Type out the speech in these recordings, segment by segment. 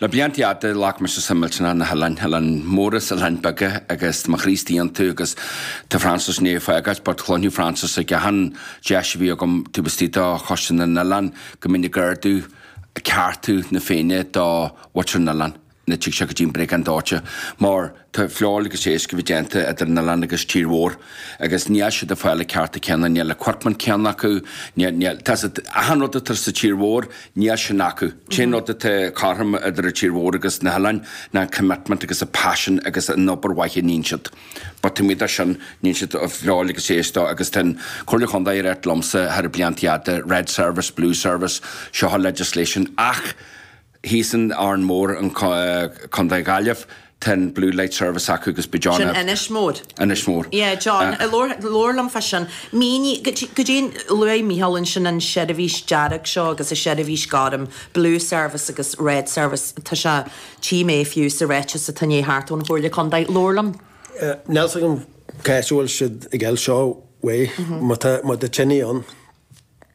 Le blianta fhada ghlac mise suim millteanach sna hoileáin, oileáin móra is oileáin beaga, agus tá mo chroí istigh iontu agus tá Francis i ndiaidh fágáilt, but chluinfeadh Francis ag achan deis a bhí agam taobh istigh de choiste na n-oileán go mbínn ag ardú ceartú na Féinne do mhuintir na n-oileán nuair a thig sé go dtí an briogáid dóiteáin Tá feoil agus iasc a bheith déanta idir an oileán agus tír mhór agus níl siad ag fáil na cearta céanna, níl an equipment céanna acu, níl, níl, tá siad, achan rud atá sa tír mhór níl sin acu. An t-aon rud atá cothrom idir an tír mhór agus na hoileáin ná an commitment agus an passion agus an obair mhaith a níonn siad. But taobh amuigh de sin níonn siad feoil agus iasc de agus tá an Comhairle Chontae ag rá liomsa thar na blianta fhada, red service, blue service, seo legislation ach, thíos in Árainn Mhór, in Co. Gaillimh, tá an Blue Light Service acu agus ba John a. Sin Inis Mór. Inis Mór. Yeah, John, labhair liom fá sin. Mínigh, goidé an, luaigh Micheál ansin an seirbhís dearg seo agus an seirbhís gorm, Blue Service agus Red Service, tá sé, tchí mé fiú sa ráiteas a tháinig thart ón Chomhairle Contae, labhair liom. Níl 's agam cá as a bhfuil siad ag fáil seo uaidh, má tá, má tá tine ann.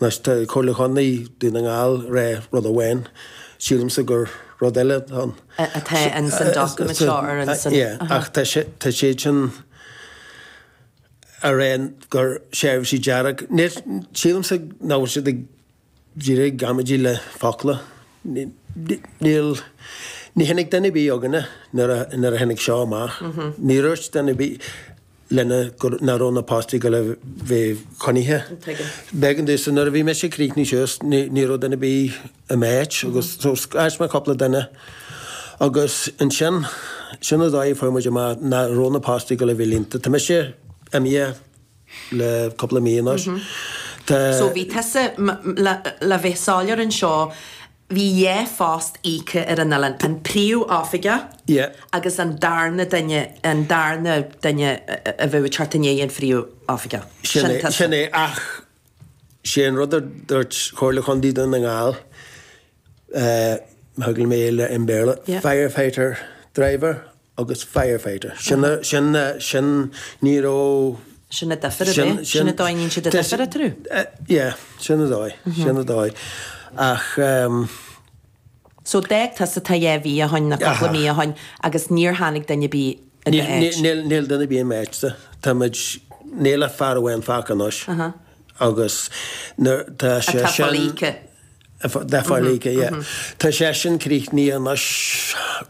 Anois tá Comhairle Chontae Dhún na nGall ag rá rud amháin, sílimse gur rud eile atá ann. atá in san document seo ar an san. Yeah, ach tá sé, tá siad sin ag rá gur seirbhísí dearg, níl, sílimse nach bhfuil siad ach díreach ag amaidí le focla. Níl, ní tháinig duine ar bith chugainne nuair a, nuair a tháinig seo amach. Níor dhúirt duine ar bith. linne nach raibh na postaí ag gabháil a bheith coinnithe. B'éigean domhsa nuair a bhí mise ag críochnú suas ní raibh duine ar bith i m'áit agus so scairt mé cúpla duine agus ansin sin an dóigh a fuair muid amach nach raibh na postaí ag gabháil a bheith líonta. Tá mise imithe le cúpla mí anois. Tá. So bhí tusa, le bheith soiléir anseo, Bhí dhá phost íoctha ar an oileán, an príomhoifigeach Yeah. agus an darna duine, an darna duine a bheadh ag teacht i ndiaidh an phríomhoifigeach. Sin Sin é, tusa. sin é. Ach sé an rud a dúirt Comhairle Chontae Dhún na nGall, eh, má thuigeann mé é le, in Béarla, Yeah. firefighter driver agus firefighter. Sin, sin, sin, ní raibh. Sin an difir a bhí, sin an dóigh a níonn siad an difir eatarthu. Yeah, sin an dóigh, sin an dóigh. Ach ehm. So d'fhág tusa tá dhá mhí ó shoin nó cúpla mí ó shoin agus níor tháinig duine a' bith i do áit? Níl, níl duine a' bith i m'áitse. Táimid, níl ach fear amháin fágtha anois. Agus nuair tá sé Atá sin, folaíocha. atá folaíocha, yeah. Tá sé sin críochnaithe anois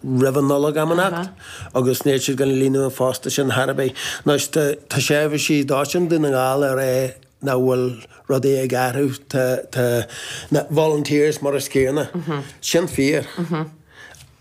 roimh an Nollaig am inteacht agus níl siad ag líonadh an phosta sin ar bith. Anois tá tá seirbhísí dóiteáin Dhún na nGall ag rá nach bhfuil rudaí ag athrú. Tá tá na volunteers mar an gcéanna. Sin fíor.